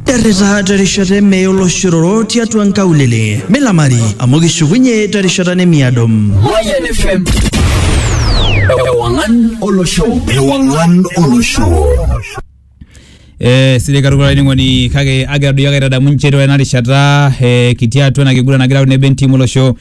Territa terishata eme oloshororo tiatua nkaulele. Milamari amu kishukunye terishata nemiado. Mayan FM. Ewangan Olosho. Ewangan Olosho. Eh, sidai katukul olainining'oni kake agira doi ake aitadamu nchere ore ena rishata eh, kitii atua ena kiguran nagira aun nebe entiim olosho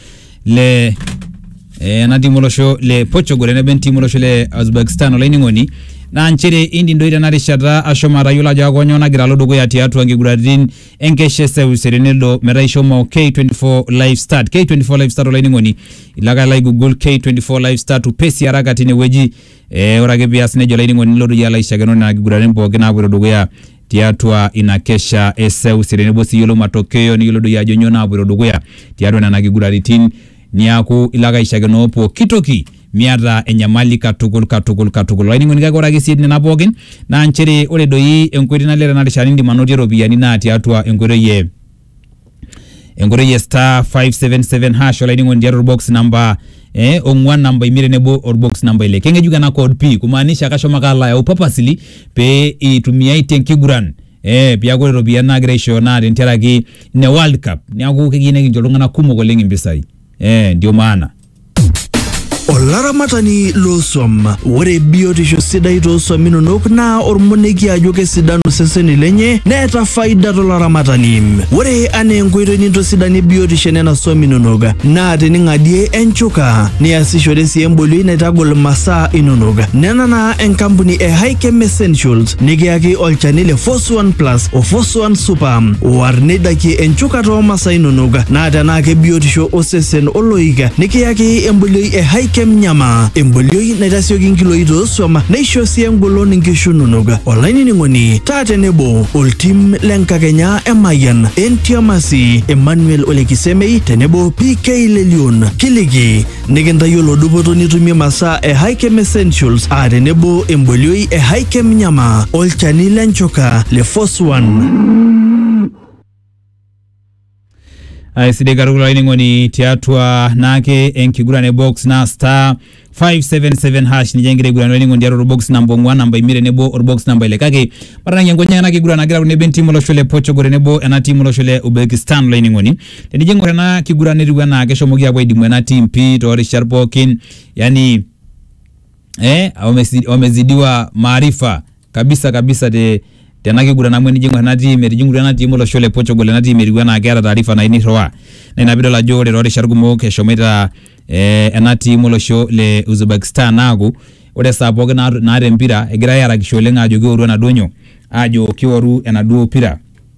le eh, ena timu olosho le Portugal eneba entimu olosho le Uzbekistan olainining'oni naa nchere indim doi tena rishata ashomo atayiolo ajo akonyoo nagira alo dukuya tiatua nkiguraritin enkesha eseuseu tenelo metaa ishomo K24 live start K24 live start olainining'oni ilo ake alo ai google K24 live start upesi araka tinewueji eh, ore ake pias nejia olainining'oni nilotu iyie alo aishakeno nena kiguraritin pookin naapoito dukuya tiatua ina kesha e seuse tenebo sii iyiolou matokeo niyiolou doi ajo nyoo naapoito dukuya tiatua nena kiguraritin niaku ilo ake aishakenoo pooki toki miata enyamali katukul katukul katukul. Olainining'oni kake ore ake sii etii nena pookin naa nchere ore doi enkoitoi nalelek tena rishata nindim anotie iropiyiani naa tiatua enkoitoi e enkoitoi e star 577 hash olainining'oni tiatua orbox namba eh, ong'uan namba imiet tenebo orbox namba ile keng'ejuk ena code pii kumaanisha kashomo ake alo ayau purposely pee itumiai tenkiguran eh, piaku ore iropiyiani naagira aishooyo naa tentiaraki ine world cup niaku keyieu nikincho iltung'anak kumok oleng impisai eh, ndio maana Olaramatani loosuam. Ore biotisho sidai toosuam inonok naa ormoneki ajo kesidanu iseseni lenye neeta faida tolaramatani. Ore anaa enkoitoi nintosidanie biotisho enena suam inonok naa tening'adie enchuka niasishore sii embolioi naitagol imasaa inonok. Nena naa enkampuni e Hikem Essentials nikiyaki olchani le Fos Suan Plus o Fosuan Super. War neidakie enchukata oo masaa inonok naa tenaa kebiotisho osesen oloik nikiyaki embolioi e Hikem Nyama. Embolioi naitasioki nkiloi toosuam neisho sii engolon nkishu inonok. Olainining'oni taa tenebo oltim le nkakenya e Mayian, Entiamasi, Emmanuel Olekisemei tenebo PK Lelion. Kiliki Nikintayiolo dupoto nitumie masaa e Hikem Essentials aa tenebo embolioi e Hikem Nyama olchani le nchoka le Force One. aisidai katukul olainining'oni tiatua naake enkiguran e box naa star 577 hash ninye egira aiguran olainining'oni tiatua orbox namba ong'uan namba imiet tenebo orbox namba ile kake matanang'ie nkonyek ena kiguran nagira tenebo entim olosho le Portugal tenebo ena tim olosho le Uzbekistan olainining'oni Tenijo aing'or ena kiguran netiu enaa keshomoki apuo aidimu ena team pii toorishat pookin yani eh, wamezi- wamezidiwa maarifa kabisa kabisa te tena kiguran amu enijo aing'or ena team etijing'utua ena team olosho le Portugal ena team etiu enaa keeta taarifa nayieu nirriwaa. Naa ina piidol ajo ore toorishat kumok eshomoita eh, ena team olosho le Uzbekistan aaku ore esaa pookin naa- naata empira egirai aarakisho oleng aajo kioru enaduo nyoo, aajo kioru enaduo pira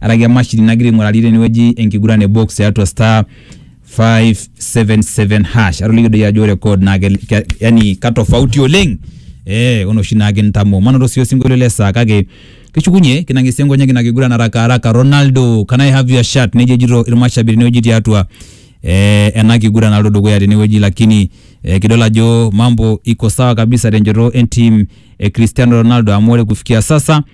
araki emashini nagira aing'urari tenewueji enkiguran e box tiatua star 577 hash atoliki doi ajo ore code naa kel- ke- yani katofauti oleng eh onoshi naa kintamoo manoto sii osinkolio le saa kake kishukunye kinang'esie nkonyek ina kiguran haraka haraka Ronaldo can I have your shirt nejo ejito irmashabiri tenewueji tiatua eh, ena kiguran naloito dukuya tenewueji lakini eh, kidol ajo mambo iko sawa kabisa tenchoto entim e Cristiano Ronaldo amu ore kufikia sasa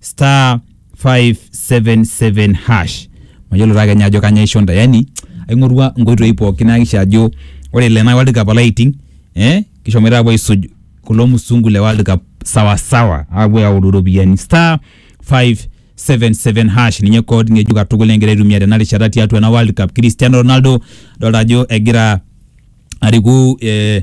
star 577 hash mayiolo taa kenya ajo kanya isho ntae yani aing'orua nkoitoi pookin naakisha ajo ore ele naa world cup alaiting eh kishomoita apuo aisuj kulo musungu le world cup sawasawa apuo aoru iropiyiani star 577 hash ninye code ng'ejuk katukul egira aitumia tena rishata tiatua ena world cup cristiano ronaldo adolta ajo egira ariku eh,